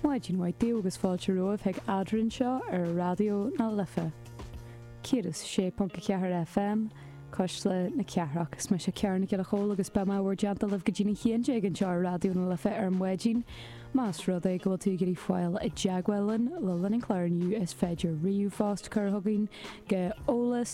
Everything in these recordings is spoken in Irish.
Maidin mhaith daoibh agus fáilte romhaibh ag Eadrainn seo ar Raidió na Life 106.4 FM, Cois Life a Ceathair. Is mise Ciara Nic Giolla Chomhaill agus beidh mé i bhur dteannta libh go dtí na h-aon déag anseo ar Raidió na Life ar maidin. Más rud é go bhfuil tú ag iarraidh fáil i dteagmháil linn le linn an chláir inniu is féidir ríomhphost a chur chugainn go eolas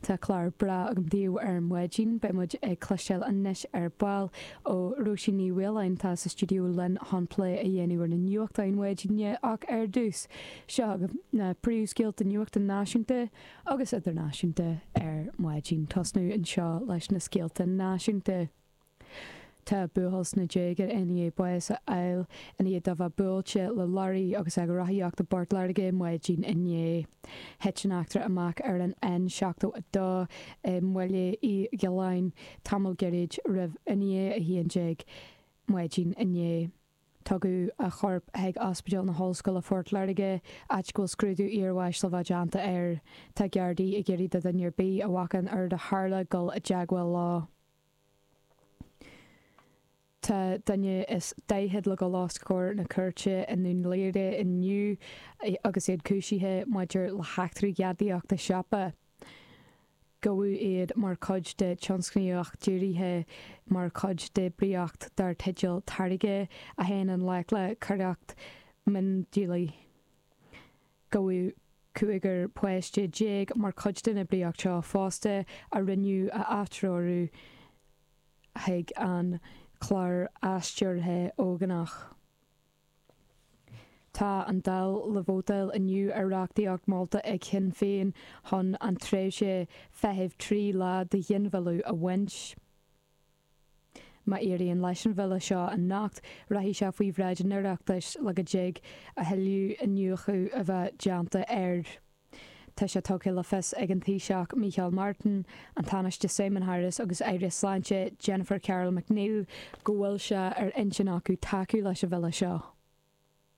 Tá clár breá agam daoibh ar maidin. Beidh muid ag cloisteáil anois ar ball ó Róisín Ní Mhaoláin atá sa stiúideo linn chun plé a dhéanamh ar na nuachtáin maidine ach ar dtús, seo agaibh na príomhscéalta nuachta náisiúnta agus idirnáisiúnta ar maidin. Tosnóidh anseo leis na scéalta náisiúnta. Tá buachaill sna déaga i ndiaidh bás a fháil ina dhiaidh dó bheith buailte le leoraí agus é ag rothaíocht i bPort Láirge maidin inné. Thit an eachtra amach ar an N72 i mBaile Uí Ghiolláin tamall gairid roimh i ndiaidh a 11 maidin inné. Tugadh a chorp chuig Ospidéal na hOllscoile Phort Láirge, áit go bhfuil scrúdú iarbháis le bheith déanta air. Tá Gardaí ag iarraidh ar dhuine ar bith a bhfaca an rud a tharla dul i dteagmháil leo. Tá duine is daichead le dul os comhair na cúirte i nDún Laoghaire inniu agus iad cúisithe maidir le heachtraí gadaíochta siopa. Gabhadh iad mar chuid de tionscnaíocht dírithe mar chuid d'oibríocht dar teideal Táirge a théann i ngleic le coireacht miondíola. Gabhadh cúigear páiste déag mar chuid den oibríocht seo fosta a rinneadh a atreorú chuig an chlár atreoraithe ógánach. Tá an Dáil le vótáil inniu ar reachtaíocht molta ag Shinn Féin chun an tréimhse feithimh trí lá do ghinmhilleadh a bhaint. Má éiríonn leis an bhille seo anocht, rachaidh sé faoi bhráid an Oireachtais le go dtig a thuilleadh iniúchadh a bheith déanta air. Tá sé tugtha le fios ag an Taoiseach Mícheál Martin, an Tánaiste Simon Harris agus Aire Sláinte Jennifer Carroll MacNeill go bhfuil sé ar intinn acu tacú leis an bhille seo.